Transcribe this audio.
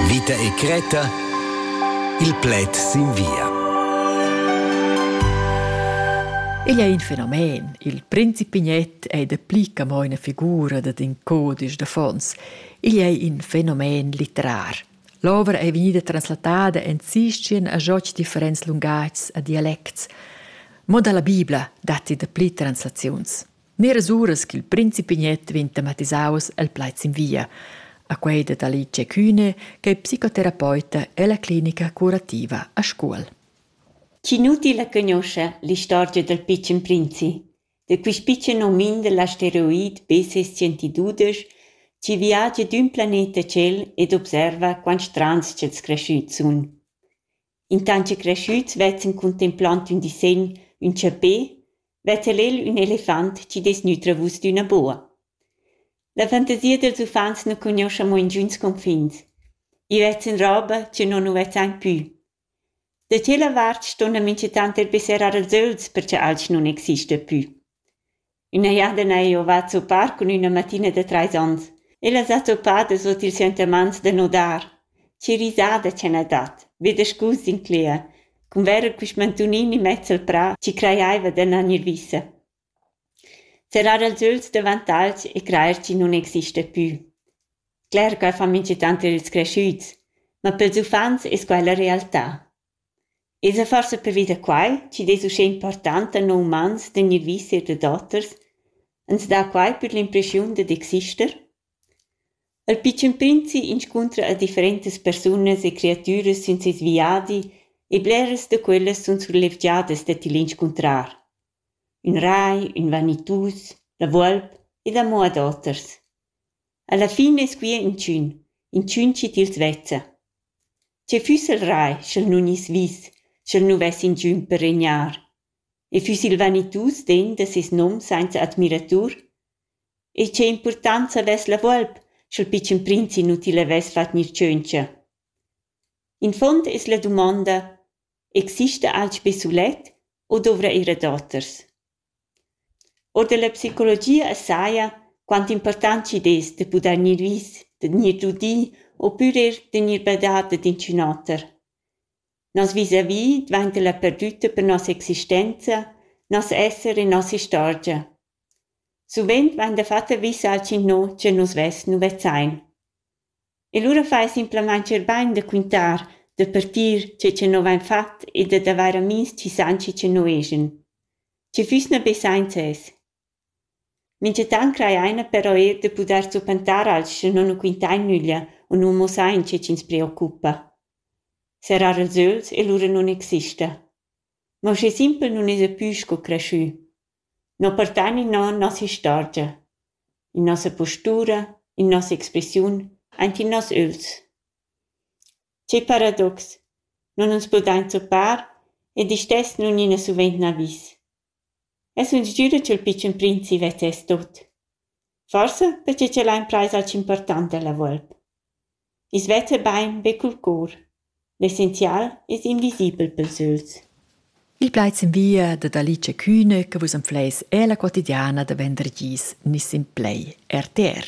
Vita e cretta. Il pled sin via. Igl è in fenomen. Il principignet è da pli che mo una figura dad in codice d'affons. Igl è in fenomen litterar. L'ovra è vegnida translatada en sistien a joc differents lungats a dialects. Mo dalla Bibla datti da pli translaziuns. Neras uras ch'il principi Gnet vegn tematisaus el plaid sin via. A quei dat Alice Kühne, che è psicoterapeuta ella clinica curativa a Scuol. Cinuti la conosce l'istorgia del piccen prinzi, de quist piccen omin dell'asteroid BC-112, chi viagia d'ün planeta cel ed observa quant strands ch'els creschüts sun. intant che creschüts vezzan contempland ün disegn ün chapè vezza el el ün elefant chi dess nütrer vus d'üna boa. La fantasia dels uffants nu cugnuoscha mo ingüns confins. I vezzan roba chi non nu vezzan pü. Da tschella vart ston la minchatant er besserar als öls perche alch nun exista pü. üna jardina eau va a zuppar cun üna mattina da trais ons. Ella s'ha zuppada sut ils sentimaints da nudar. Che risada cha n'ha dat, be da scus incler, cun verer quist mantunini mezz al prà chi crajaiva d'annar gnir vissa. Serrar els öls davant alch e crajer chi nun exista pü. Cler ch'eu fa minchatant ir ils creschüts, ma pels uffants es quai la realtà. Ins ha forsa pervi da quai chi dess uschè importanta non umans tegnir viseta dad oters, ans dà quai per l'impreschiun dad exister? Il pitschen prinzi inscuntra a differentas persunas e creatüras sün seis viadi e bleras da quellas sun surlevgiadas da til inscuntrar. Ün rai, ün vanitus, la volp ed amo ad oters. Alla fin es quia inchün, inchün chi tils vezza. Che füss el rai, sch'el nun gnisse vis, sch'el nu vess inchün per regnar? E füss il vanitus den da seis nom sainza admiratur? E che importanza vess la volp, sch'el pitschen prinz inutil avess fat gnir tschöntscha? In fond es la dumonda: exista alch be sulet o dovra ir a doters? Or dalla psicologia saja quant impurtant chi'd es da pudair gnir vis, da gnir dudi opüra da gnir badà dad inchün oter. Nos vis-à-vis dvainta la perdütta per nossa existenza, nos esser e nossa istorgia. Suvent vain dafatta vis alch inno cha nus vess nu vezzain. E lura fai simplamain scherbain da quintar, da partir tge che nus avain fatg e dad avair amihs chi san chi che nus eschan. Sche füss na be sainza es. Minchatant crajaina però eir da pudair zuppantar alch sche non nu quintain nüglia u nu mussain che chi'ns preoccupa. Serrar els öls e lura nun exista. Ma uschè simpel nun esa pü sco creschü. Non partan innan nossa istorgia, in nossa postura, in nossa expressiun, aint in noss ögls. Che paradox! Non uns podain zuppar ed istess nun ina suvent n'avis. E sun sgüra cha'l pitschen prinzi vezzess tot. Forsa perche ch'el ha imprais alch important dalla volp. I's vezza bain be cul cor. L'essenzial es invisibel pels ögls. Il plaid sin via dad Alice Kühne che vus empleis ella quotidiana da vendergis Niss in Play, RTR.